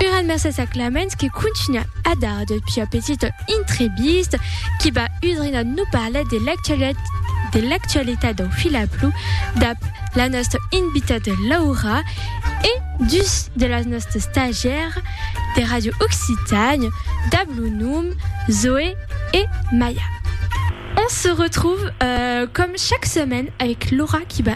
Uran mercés a Clamens que contunha a dar de pia petita intrevista qui va udrinar no parlar de l'actualitat de l'actualitat dau filaplu dab la nosta invitada Laura e dus de las nostas stagiaires de Radio Occitània dab lo nom Zoé e Maia. On se retrouve comme chaque semaine avec Laura qui va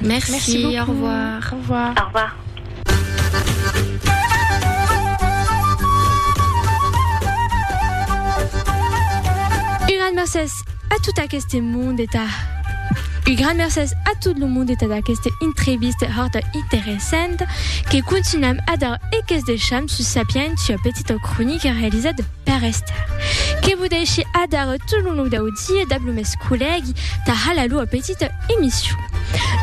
Merci, au revoir. Au revoir. Au revoir. Un gran mercés a tot aqueste monde e ta. Un gran mercés a tot lo monde e ta d'aqueste intreviste horta interessanta que contunam a dar e que's deisham sus Sapientia, petita cronica realizada. Per restar. Que vos dèishi adar tot lo long dau dia dab lo mes collègue tà halar lua petita emission.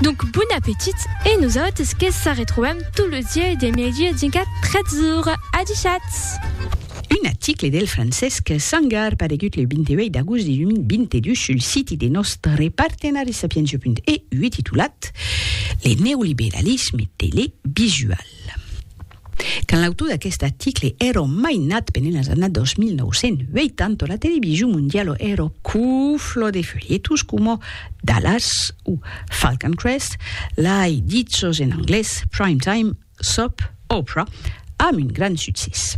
Donc bon appetit e nosautres que sa retrobam tot lo dia e de mèdia dinca 3 ora. Adishatz! Un aticle del Francesc Sangar paregut le 28 d'agost 2022 sul siti de nòstre partenari Sapientia.eu e titulat Le neoliberalisme televisual. Quand l'autor d'aqueste article èro mainat pendent las annadas 1980, la television mondiala èro cufla de folhetos coma Dallas o Falcon Crest, lai dichos en anglés Prime Time, Soap Opera, amb un grand succès.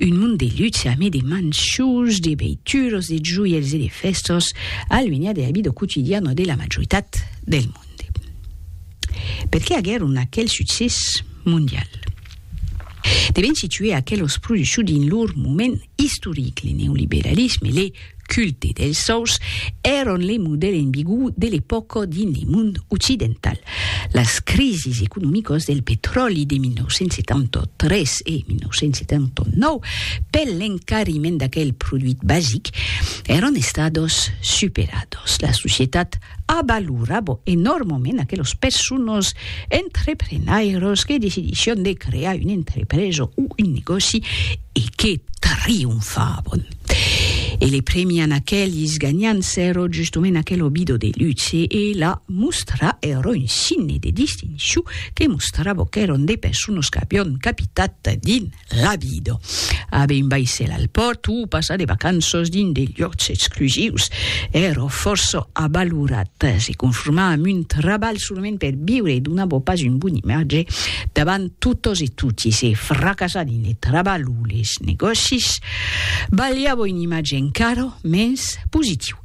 Un mond de luxe amé de manchús, de beituros, de joièls e de fèstas, aluenhat de la vida quotidiana de la majoritat del monde. Per qué aguèron aquel succès mondial? Devèn situer aquelos produchus dins lor moment istoric, le neoliberalisme, le. culte dels sòus èron le modèl enbigu de l'epòca dins le mond occidental. Las crisis economicas del petròli de 1973 e 1979 per l'encariment d'aquel produit basic èron estadas superadas. La societat A valorar bo enòrmament aquelos persones entreprenairos que decidisson de crear una entrepresa o un negòci e que trionfavon. E le premian aquelis ganhants sèro justement aquel obido de luxe e la mostra ero un signe de distincion que mostrava qu'èron de persones qu'avion capitat dins Rabido. Abe un baissèl al pòrt o passar de vacanços dins de lhòcs exclusius. Èra fòrça avalorat. Se conformar amb un trabalh solament per viure donava pas un bon imatge davant totas e toti. Se fracassar dins le trabalh o les negòcis balhava un imatge encara mens positiu.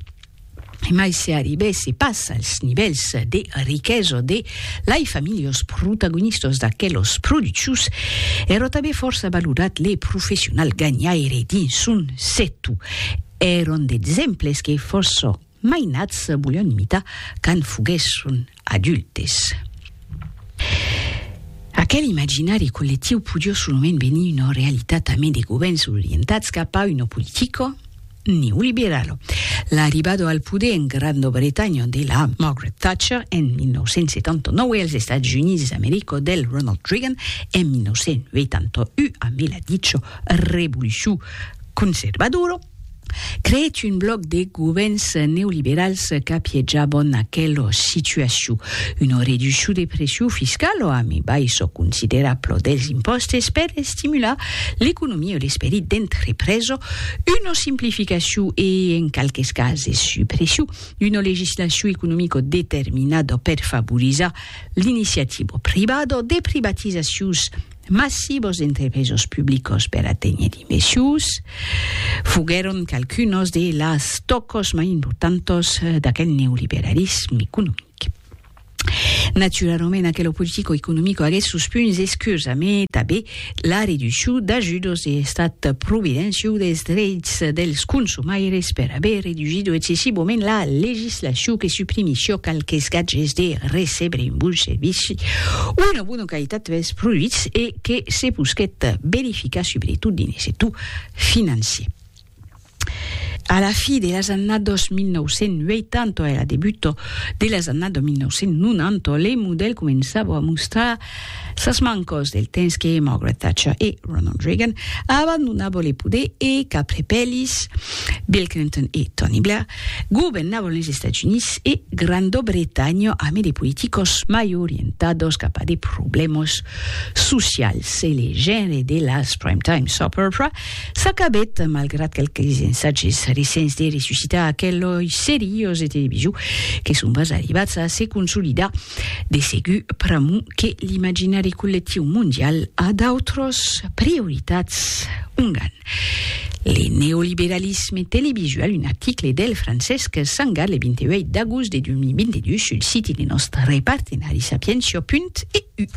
E mai se arribèsse pas als nivèls de riquesa de lai familhos protagonistas d'aquelos productius, èrò tanben fòrça valorat le professional ganhaire dins son sectu. Èron d'exemples que fòrça mainats volián imitar quand foguèsson adultes. Aquel imaginari collectiu podió solament venir una realitat amé de govèrns orientats cap a una politica neoliberala. L'arribada al poder en Granda Bretanha de la Margaret Thatcher en 1979 e als Estats Units d'America del Ronald Reagan en 1981 amé la dicha revolucion conservadora, creèt un blòc de govèrns neoliberals qu'apiejabon aquela situacion, una reduccion de pression fiscala a mai baissa considerabla dels impòstes per estimular l'economia e l'esperit d'entrepresa, una simplificacion e, en qualques cases, supression d'una legislacion economica determinada per favorizar l'iniciativa privada, de privatizacions, Massibos d'entrepresos publicos per aténher d'imbeçius foguèron qualcunos de las tòcos mai importantos d'aquel neoliberalisme economic. Naturalament, aquelo politico economico aguèt sos punts escurs, amé tabé la reduccion d'ajudos de l'Estat providenciu dels dreits dels consumaires per aver reducido excessivament la legislacion que suprimissió qualques gatges de recebre un bon servici, una bona qualitat des produits e que se posquèt verificar subretot dins sector financier. A la fi de las annados 1980 e la debuta de las annados 1990, le modèl començava a mostrar sas mancas del temps que Margaret Thatcher e Ronald Reagan abandonava le poder e qu'après Pellis, Bill Clinton e Tony Blair, Governavan les Estats Units e Granda Bretanha amé de politicos mai orientados cap a de problèmas socials e le genre de las Prime Time Supper Pra s'acabèt, malgrat quelques ensatges recents de ressuscitar aquelei serios de television que son pas arribats a se consolidar. De segur, pr'amor que l'imaginari collectiu mondial a d'autras prioritats, ongan le neoliberalisme televisual, un article del Francesc Sangar le 28 d'agost de 2022 sul siti de nòstre partenari sapientia.eu.